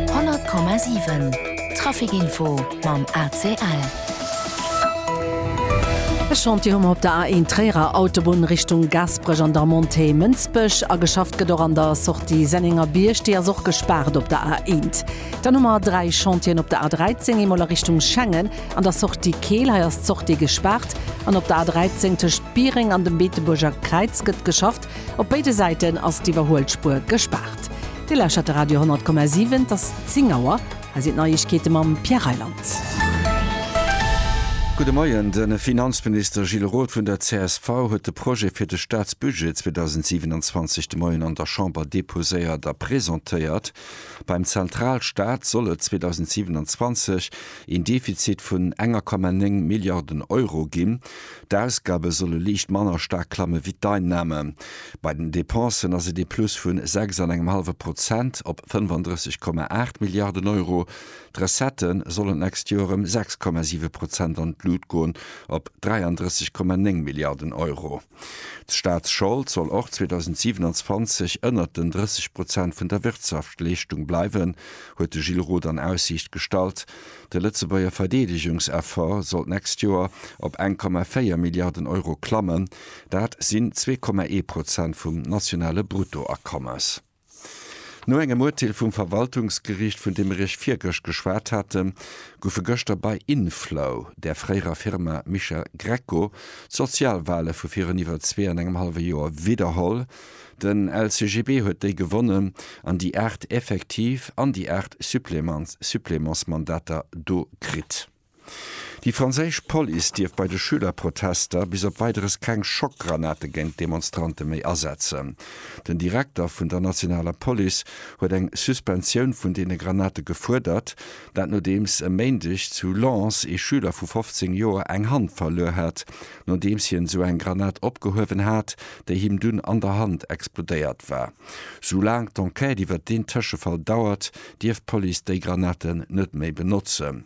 100,7 Trafic Info mam ACL. E Chantier hu mer op der A1 Tréierer Autobunn Richtung Gasperech an der Montée Mënsbech. A geschafft gëtt och an der Sortie Sennengerbierg, déi ass och gespaart op der A1. Dann hu mer dräi Chantieren op der A13, eemol a Richtung Schengen an der Sortie Keel, hei ass d'Sortie gespaart. An op der A13 tëscht Biereng an dem Beetebuerger Kräiz gëtt geschafft, Op béide Säiten ass d'Iwwerhuelspuer gespaart. Dir lauschtert de Radio 10,7. Et ass 10 Auer. Hei sinn d'Neiegkeete mam Pierre Reyland. Gudde Moien. De Finanzminister Gilles Roth vun der csv huet de Projet fir de Staatsbudget 2027 de Moien an der Chamber deposéiert a presentéiert. Beim Zentralstaat soll et 2027 een Defizit vun enger Komma néng Milliarden Euro ginn. D'Ausgabe solle liicht manner staark klamme wéi d'Einnahme. Bei den Depensen ass et ee Plus vu sechs an engem hallwe Prozent op 35, 8 Milliarden Euro. D'Recettë sollen d'nächst Joer ëm 6,7 Prozent an d'Lut goen, op 33,9 Milliarden Euro. D'Staatsschold soll och 2027 ënnert den 30 Prozent vun der Wirtschaftsleeschtung bleiwen, huet de Gilles Roth an Aussiicht gestallt. De Lëtzebuerger Verdeedegungseffort soll d'nächst Joer op eng Komma véier Milliarden Euro klammen, dat sinn zwee Komma ee Prozent vum nationale Bruttoakommes. No engem Urteel vum Verwaltungsgeriicht, vun deem ech Iech virgëscht geschwat haten, goufe gëschter bei Inflow, där fréierer Firma Mischa Grecco, d'Sozialwale vu virun iwwer zwee an engem hallwe Joer widderholl, Den LCGB huet déi gewonnen an déi 8 effektiv an déi 8 Supplémentsmandater do kritt. Déi franséisch Police dierf bei de Schülerprotester bis op Weideres keng Schockgranate géint d'Demonstrante méi asetzen. Den Direkter vun der nationaler Police huet eng Suspensioun vun deene Granate gefuerdert, dat nodeems e Méindeg zu Lens ee Schüler vu 15 Joer eng Hand verluer hat, nodeems hien esou eng Granat opgehuewen hat, déi him dunn an der Hand explodéiert war. Soulaang d'Enquête iwwert deen Tëschefall dauert, dierf d'Police déi Granaten net méi benotzen.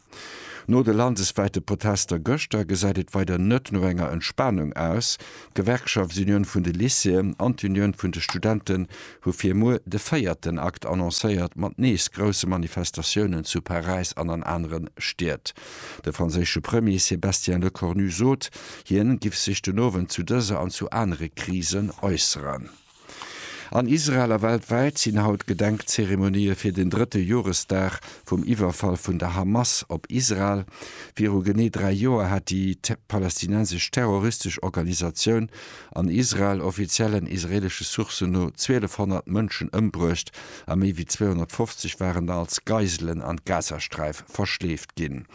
No de landeswäite Protester gëschter gesäit et weider net no enger Entspanung aus. D'Gewerkschaftsunioun vun de Lycéeën an d'Unioun vun de Studenten hu fir muer de véierten Akt annoncéiert, mat nees grousse Manifestatiounen zu Paräis an an anere Stied. De franséische Premier Sébastien Lecornu sot, hien giff sech den Owend zu dëser an zu anere Krisen äusseren. An Israel a weltwäit sinn haut Gedenkzeremonië fir den drëtte Joresdag vum Iwwerfall vun der Hamas op Israel. Viru genee dräi Joer hat déi palästinensesch terroristesch Organisatioun An Israel, Offiziellen israelesche Sourcen no 1200 Mënschen ëmbruecht a méi wéi 250 waren da als Geiselen an d'Gazasträif verschleeft ginn.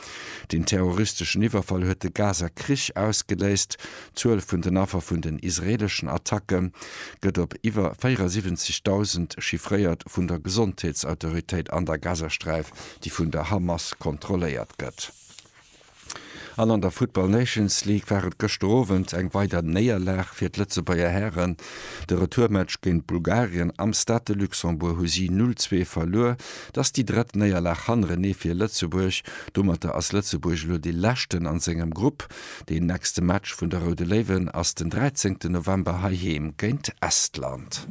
Den terroristeschen Iwwerfall huet de Gaza-Krich ausgeléist. D'Zuel vun den Affer vun den israeleschen Attacke gëtt op iwwer 74.000 chiffréiert vun der Gesondheetsautoritéit an der Gazasträif, déi vun der Hamas kontrolléiert gëtt. An an der Football Nations League war et gëschter Owend eng weider Néierlag fir d'Lëtzebuerger Hären. De Retourmatch géint Bulgarien am Stade de Luxembourg hu si 0, 2 verluer. Et ass déi drëtt Néierlag hannerenee fir Lëtzebuerg. Domatter ass Lëtzebuerg elo dee Leschten a sengem Grupp. Deen nächste Match vun de Roude Léiwen ass den 13 November heiheem géint Estland.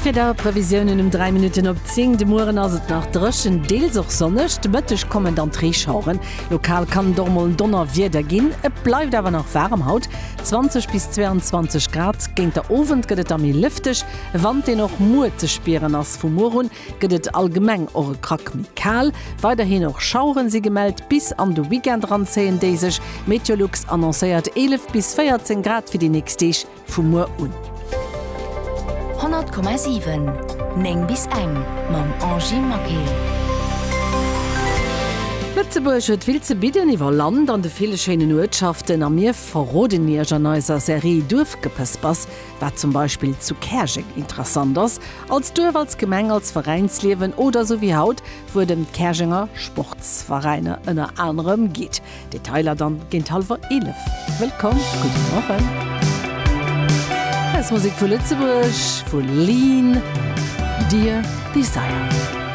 D'Wieder, Previsiounen um 3 Minutten op 10, De Mueren ass et nach dréchen, deels och sonneg, de Mëtteg kommen dann d'Reeschaueren. Lokal kann et och mol Donnerwieder ginn. Et bleift awer nach waarem haut, 20 bis 22 Grad. Géint der Owend gëtt et da méi lëfteg, e Wand, deen och muer ze spieren ass. Vu muer un gëtt et allgemeng och e Krack méi kal. Weiderhin och Schaueren si gemellt. Bis an de Weekend eran zéien déi sech. Meteolux annoncéiert 11 bis 14 Grad fir déi nächst Deeg vu muer un. 100,7 9 bis eng mam Angie Maquet. Lëtzebuerg huet vill ze bidden iwwer Land an de ville schéinen Uertschaften a mir verroden Iech an eiser Serie Duerfgepëspers, wat zum Beispill zu Käerjeng interessant ass, als Duerf, als Gemeng, als Veräinsliewen oder esou wéi haut, wou et ëm d'Käerjenger Sportsveräiner ënner anerem geet. Detailer dann géint hallwer 11. Wëllkomm, gudde Morgen! Hausmusek vu Lëtzebuerg vu Lean, Dear Desire.